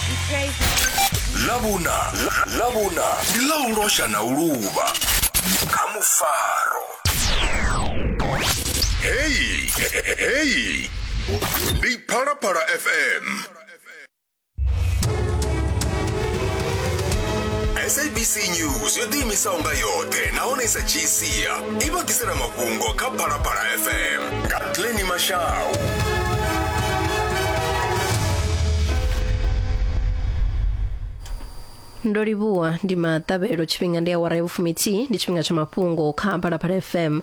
He prays my ḽavhuna ḽa- ḽavhuna ndi ḽa u losha na u luvha kha mufaro heyi heyi ndi phalaphala fm sabc news yo ḓiimisaho nga yoṱhe nahone i sa dzhii sia i vha ḓisela mafhungo kha phalaphala fm Katleni Mashau. ndo livhuwa ndi maṱavhelo tshifhinga ndi awara ya vhufuminthihi ndi tshifhinga tsha mafhungo kha phalaphala fm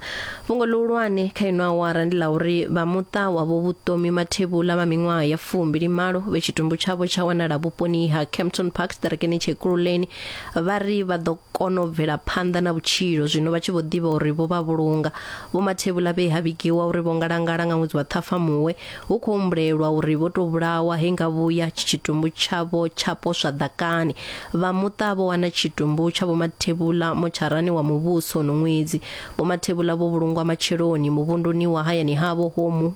fhungo ḽihulwane kha ino awara ndi ḽa uri vha muṱa wavho vhuṱomi mathevhula vha miṅwaha ya fumbili malo vhe tshitumbu tshavho tsha wanala vhuponi ha campton park ḓirekeni tshekululeni vha ri vha ḓo kona u bvela phanḓa na vhutshilo zwino vha tshi vho ḓivha uri vho vha vhulunga vho mathevhula vhe ha vhigiwa uri vho ngalangala nga ṅwedzi wa ṱhafamuwe hu khou humbulelwa uri vho tou vhulawa he nga vhuya tshitumbu tshavho tsha poswa ḓakani vha muṱa vho wana tshitumbu tsha vho mathevhula motsharani wa muvhuso no ṅwedzi vho mathevhula vho vhulungwa matsheloni muvhunduni wa hayani havho homu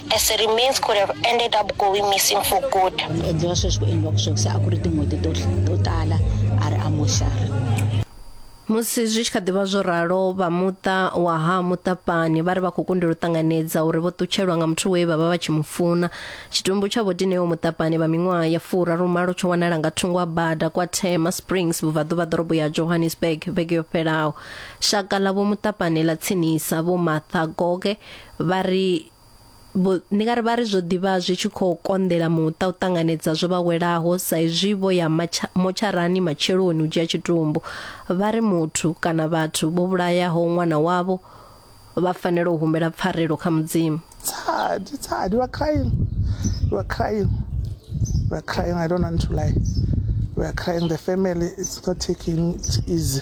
as it remains could have ended up going missing for good endliwa sweswi ku endliwa ku swekisa a ku ri tin'hweti to to tala a ri amoxari musi zwi tshi kha ḓivha zwo ralo vha muṱa wa ha muṱapani vha ri vha khou kundelwa u ṱanganedza uri vho ṱutshelwa nga muthu we vha vha vha tshi mu funa tshitumbu tsha vho dineo muṱapani vha miṅwaha ya fura rumalo tsho wanala nga thungo ha bada kwa tema springs vhubvaḓuvha ḓorobo ya johannesburg vhege yo fhelaho shaka ḽa vho muṱapani ḽa tsinisa vho matha goge vha ri vho ndi nga ri vha ri zwo ḓivha zwi tshi khou konḓela muṱa u ṱanganedza zwo vha welaho sa izwi vho ya motsharani matsheloni u dzhia tshitumbu vha ri muthu kana vhathu vho vhulayaho ṅwana wavho vha fanela u humbela pfarelo kha mudzimu sad sad you are crying you are crying you are crying i don't want to lie we are crying the family it's not taking it easy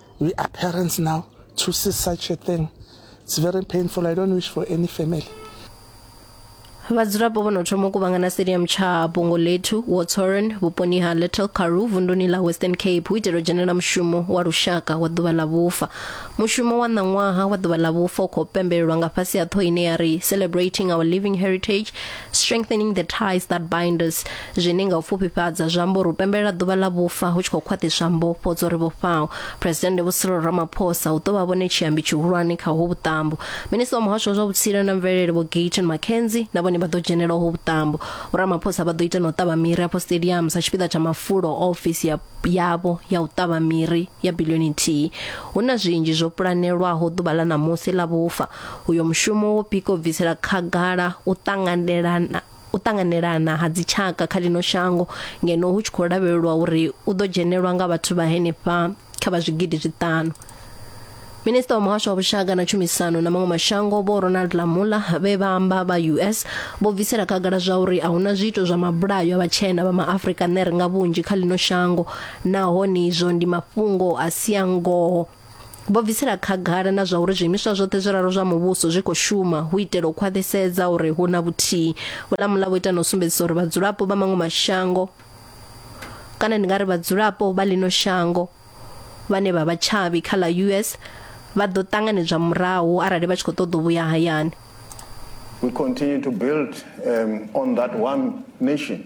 We are parents now to see such a thing. It's very painful. I don't wish for any family. vhadzulapo vho no thoma u kuvhangana stadium tsha bongo lethu watsoren vhuponi ha little karu vunduni ḽa western cape hu itela u dzhenela mushumo wa lushaka wa ḓuvha ḽa vhufa mushumo wa ṋaṅwaha wa ḓuvha ḽa vhufa u khou pembelelwa nga fhasi ha ṱhoho ine ya ri celebrating our living heritage strengthening the ties that bind us Zwine nga u pfufhifhadza zwi amba uri u pembelela ḓuvha ḽa vhufa hu tshi khou khwaṱhiswa mbofho dzo ri vhofhaho. Presidennde Vho Cyril Ramaphosa hu ḓo vha vhone tshiambi tshihulwane kha uho vhuṱambo. Minista wa Muhasho wa zwa Vhutsila na Mvelele Vho Gayton McKenzie na vhone vha ḓo dzhenela uho vhuṱambo. Vho Ramaphosa vha ḓo ita na u ṱavha miri afho stadium sa tshipiḓa tsha mafulo a ofisi ya yavho ya u ṱavha miri ya bilioni nthihi. Hu na zwinzhi zwo pulanelwaho ḓuvha ḽa ṋamusi ḽa vhufa. Uyo mushumo wo pika u bvisela khagala u ṱanganelana u ṱanganelana ha dzitshaka kha lino shango ngeno hu tshi khou lavhelelwa uri u ḓo dzhenelwa nga vhathu vha henefha kha vha zwigidi zwiṱanu minista wa muhasho wa vhushaka na tshumisano na maṅwe mashango vho ronald lamula vhe vha amba vha us vho bvisela khagala zwa uri a huna zwiito zwa mabulayo a vhatshena vha maafrika ner nga vhunzhi kha lino shango nahone izwo ndi mafhungo a si a ngoho Vho bvisela khagala na zwa uri zwiimiswa zwoṱhe zwiraru zwa muvhuso zwi khou shuma hu itela u khwaṱhisedza uri hu na vhuthihi. Vho Lamula vho ita na u sumbedzisa uri vhadzulapo vha maṅwe mashango kana ndi nga ri vhadzulapo vha ḽino shango vhane vha vha tshavhi kha ḽa US vha ḓo ṱanganedzwa murahu arali vha tshi khou ṱoḓa u vhuya hayani. We continue to build um, on that one nation.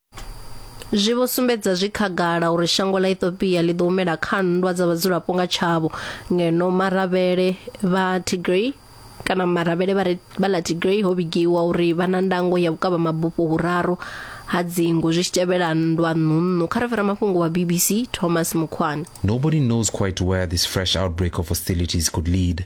zwi vho sumbedza zwi khagala uri shango ḽa Ethiopia ḽi ḓo humela kha nndwa dza vhadzulapo nga tshavho ngeno maravhele vha Tigray kana maravhele vha vha ḽa Tigray ho vhigiwa uri vha na ndango ya vhukavha mabufho huraru ha dzingu zwi tshi tevhela nndwa ṋunṋu kha refera mafhungo wa BBC Thomas Mukhwana Nobody knows quite where this fresh outbreak of hostilities could lead.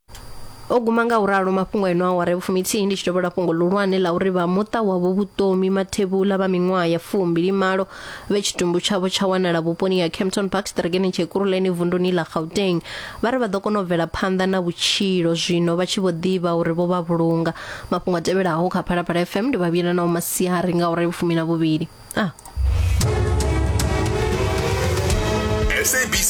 o guma nga u ralo mafhungo eno awara vhufuminthihi ndi tshi tovhola fhungo ḽihulwane ḽa uri vha muṱa wavho vhutomi mathevhula vha miṅwaha ya fumbili malo vhe tshitumbu tshavho tsha wanala vhuponi ha campton park stregeneng tshekuruleni vunduni ḽa gauteng vha ri vha ḓo kona u bvela phanḓa na vhutshilo zwino vha tshi vho ḓivha uri vho vha vhulunga mafhungo a tevhelaho kha phalaphala fm ndi vhavhuyela nao masiari nga uri vhufumi na vhuvhili ah. sabc